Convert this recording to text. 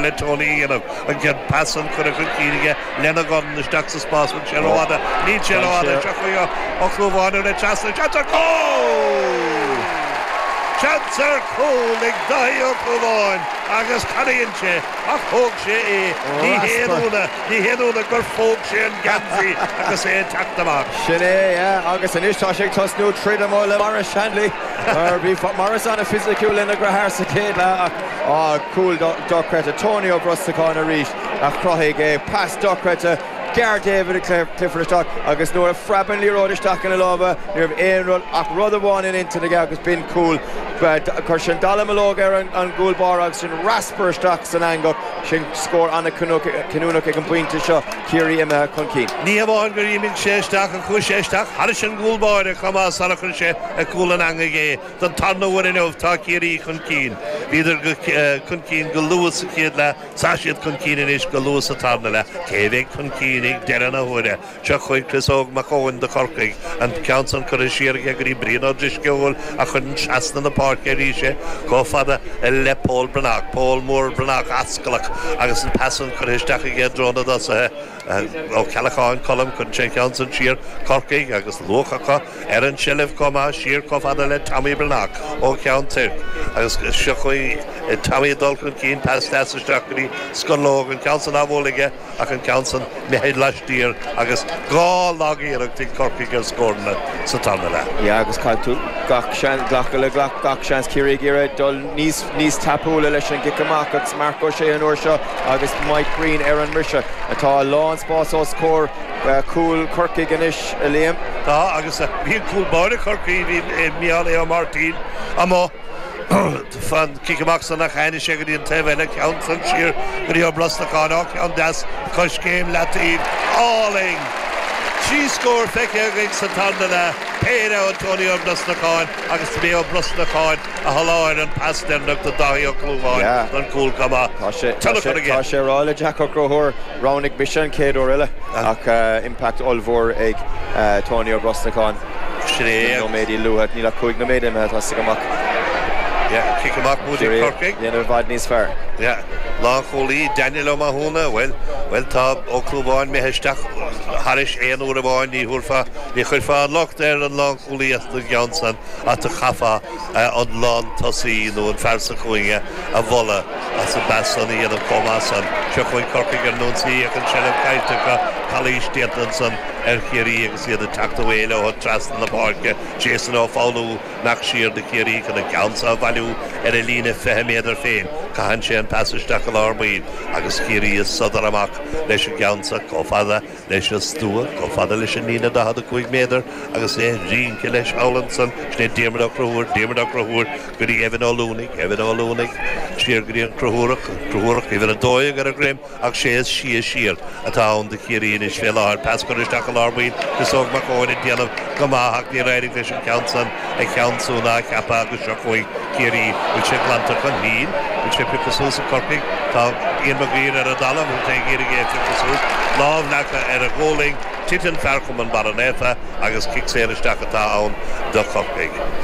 le Tony a dhéanamh. An chéad phas san curtha chun cinn aige lena dhorn isteach sa spás bhfuil sé rófhada. Níl sé rófhada. Seo chugaibh Ó Clúmháin ar na trasna. Seans ar cúl! Seans ar cúl ag Dáithí Ó Clúmháin agus canaíonn sé ach thóg sé é. Ní haon ionadh, ní haon ionadh gur phóg sé an geansaí agus é ag teacht amach. Sin é, yeah, agus anois tá sé ag tosnú troid amuigh le Maurice Shanley. Mar bhí Maurice an-fhisiciúil lena dheartháir sa chéad leath ach, Cúl dochreidte Tony Ó Brosnacháin arís a chruthaigh é. Pas dochreidte ghearr David Clifford isteach agus nuair a phreab an liathróid isteach ina lámha ní raibh aon rud ach rud amháin in intinn aige agus b'in cúl. Chuir sé an dallamullóg ar an gcúl báire agus sin raspar isteach san eangach. Sin scór an-chinniúnach ag an bpointe seo, Ciarraí imithe chun cinn. Ní hamháin gur imigh sé isteach ach chuaigh sé isteach thairis an gcúl báire chomh maith sara chuir sé ar chúl an eangaigh é. Don tarna uair inniu, tá Ciarraí chun cinn. Bhíodar chun cinn go luath sa chéad leath, tá siad chun cinn anois go luath sa tarna leath. Cé a bheidh chun cinn ag deireadh na huaire? Seo chugaibh Chris Óg Mac Eoin do Chorcaigh, an ceann san curtha siar aige go dtí Brian Ó Drisceoil a chuireann trasna na páirce arís é chomh fada le Pól Breathnach. Pól mór Breathnach ascalach agus an pas san curtha isteach aige i dtreo na dtosaithe. Ó Ceallacháin, Colm, cuireann sé an ceann san siar, Corcaigh, agus luach acu ar an seilbh chomh maith, siar chomh fada le Tommy Breathnach ó Cheann Toirc, agus seo chugaibh Tommy ag dul chun cinn, pas deas isteach go dtí Scorlóg, an ceann san á bhualadh aige ach an ceann san imithe laistiar agus dhá lag-iarracht ag Corcaigh ar scóranna sa tarna leath. Yeah, agus caithfidh tú gach seans glacadh le gach seans, Ciarraí ag iarraidh dul níos. níos tapúla leis an gcic amach agus Marc Ó Sé an uair seo agus Mike Breen ar an mbriseadh. Tá a lán spáis os comhair cúl Chorcaigh anois, a Liam. Tá agus bhí cúl báire Chorcaí, bhí Micheál Aodh Ó Máirtín amuigh fan cic amach san ach tháinig sé go dtí an taobh eile, ceann san siar go dtí Ó Brosnacháin, á ceann deas, coiscéim leataoibh, álainn! Trí scór feicthe againn sa tarna leath, péire ó Tony Ó Brosnacháin agus dob é Ó Brosnacháin. a sholáthair an pas deireanach do Dháithí Ó Clúmháin don chúl. Tá an-tionchar aige? Tá sé ag rá le Jack Ó Conchúir, Roghnaigh mise an chéad uair eile ach impact ollmhór ag Tony Ó Brosnacháin sin é. Cúig nóiméad luath, níl ach cúig nóiméad imithe, tá Sig amach. Cic amach buaite ag Corcaigh. Dhéanamh i bhfad níos fearr. Lánchúlaí, Daniel Ó Mathúna, Bhuel, bhuel, tá Ó Clúmháin imithe isteach thairis aon uair amháin, ní thabharfá, ní chuirfeá an locht ar an lánchúlaí as an gceann san. áit a chaithfeá an lántosaí nó an fear sa chúinne a mholadh as an bpas san a dhéanamh chomh maith san. Seo chugainn Corcaigh ar an ionsaí ach an seilbh caillte acu. Calaois déanta ansan ar Chiarraí agus iad ag teacht ar aghaidh leo trasna na páirce. Jason Ó Foghlú, nach siar do Chiarraí chun an ceann seo a bhailiú ar a líne fiche méadar féin, caitheann sé an pas isteach i lár baill agus Ciarraí ag sodar amach leis an gceann seo chomh fada leis an stua chomh fada leis an líne 45 méadar agus é ag rince leis thall ansan, sin é Diarmaid Ó Conchúir, Diarmaid Ó Conchúir go dtí Evan Ó Lúnaigh, Evan Ó Lúnaigh siar go dtí an Conchúrach, an Conchúrach uimhir a dó dhéag ar a dhroim ach sé is sia siar atá ann do Chiarraí anois fé láthair, pas curtha isteach i lár baill, Chris Óg Mac Eoin ag déanamh go maith ach níor éirigh leis an ceann san. a cheansú ná a cheapadh agus seo chugainn Ciarraí. Bhfuil sé glanta chun cinn? Bhfuil sé pioctha suas ag Corcaigh? Tá Ian Mag Uidhir ar an dtalamh agus é ag iarraidh é a phiocadh suas. Lámh leagtha ar a ghualainn, titeann fear Chumann Barra Naofa agus cic saor isteach atá ann do Chorcaigh.